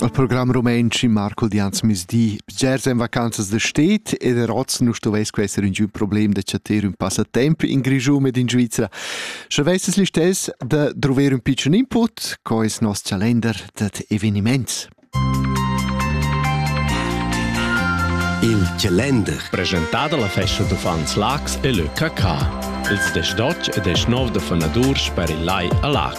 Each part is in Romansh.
Al program rumantsch Marco Dianz misdi bgers en vacanzas da stet e der oz nu stovess queser ün giu problem da chatter ün passatemp in Grischun ed in Svizzera. Sche vesses listess da druver ün pitschen input, co es nos calender dat eveniments. Il calender presentà dalla festa d'uffants Lax e le KK. Ils desdotg e desnov da fonadurs per il Lai a Lax.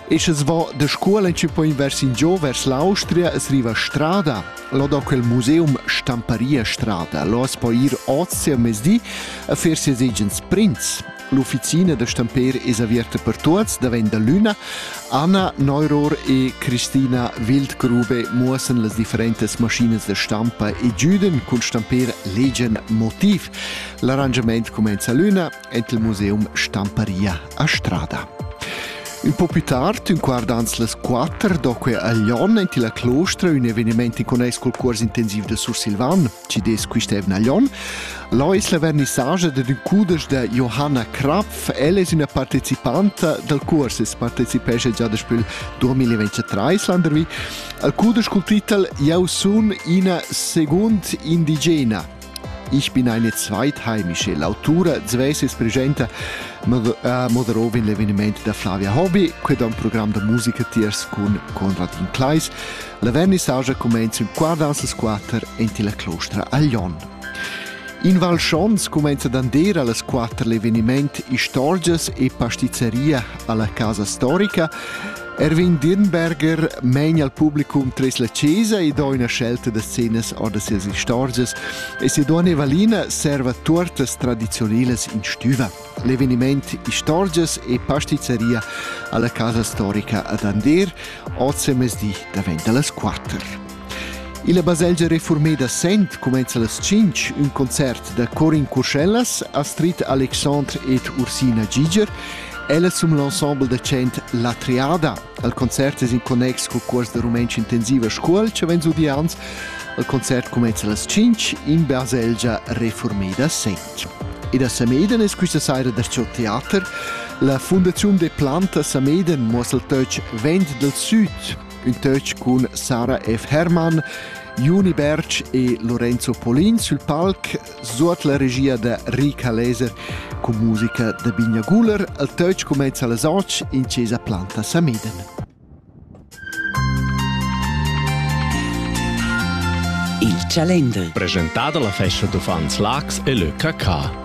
E sche va de scuola ci poi vers in gio vers l'Austria es riva strada, lo da quel museum Stamparia Strada, lo as po ir ozia mezdi a fer ses agens prints. L'ufficina da stamper es averta per tuots davent da l'una. Anna Neuror e Christina Wildgrube muossen las differentas maschinas da stampa e giuden cun stamper legian motiv. L'arrangiament comenza l'una, ed il museum Stamparia a Strada. Un po più tard, un quart ans les quatter, doque a Lyon, enti la Clostra, un eveniment icones col cuors intensiv de Sursilvan, ci des quistevna a Lyon, Là es la vernissage de un cudesch de Johanna Krapf. Ella es una partecipanta del curs, es partecipesce già daspü il 2023 landervi, al cudesch col titel Eu sun ina segund indigena. Ich bin eine zweitheimische Lautura, Zves es presenta, mo darò in l'eveniment da Flavia Hobby, que da un program da musica tiers cun Conradin Kleis. La vernissagia comenza in quartans as quatter en la clostra a Lyon. In Val Schons cumenza d'andere alle 4 l'eveniment Istorgias e Pastizeria alla Casa Storica Erwin Dirnberger meina al publicum tres la chesa e do ina scelta da scenas ord sias istorgias e se duona Evalina serva tuortas tradizionilas in stüva. L'eveniment Istorgias e pastizeria alla casa storica ad Ander, oz mezdi daventa las quatter. Illa baselgia refurmeda Sent cumenza las tschinch ün concert da corin Curschellas, Astrid Alexandre ed Ursina Giger Ella sum l'ensemble da chant La Triada. Al concert es in connex cul cuors da rumentsch intensiva Scuol cha vegn zudi ans. Al concert cumenza las 5 in baselgia Reformeda Sent. E da Sameden es quista saira darcho teater. La fundaziun de Planta Sameden mos il töch Vent del Süd ün töch cun Sarah F. Hermann, Juni Berg e Lorenzo Polin sül palc, suot la regia da Rika Leser cun musica da Binja Guler. Il töch cumenza las 8 in Cesa Planta Samiden. Il Chalender. Presentà dalla Festa d'uffants Lax e Le KK.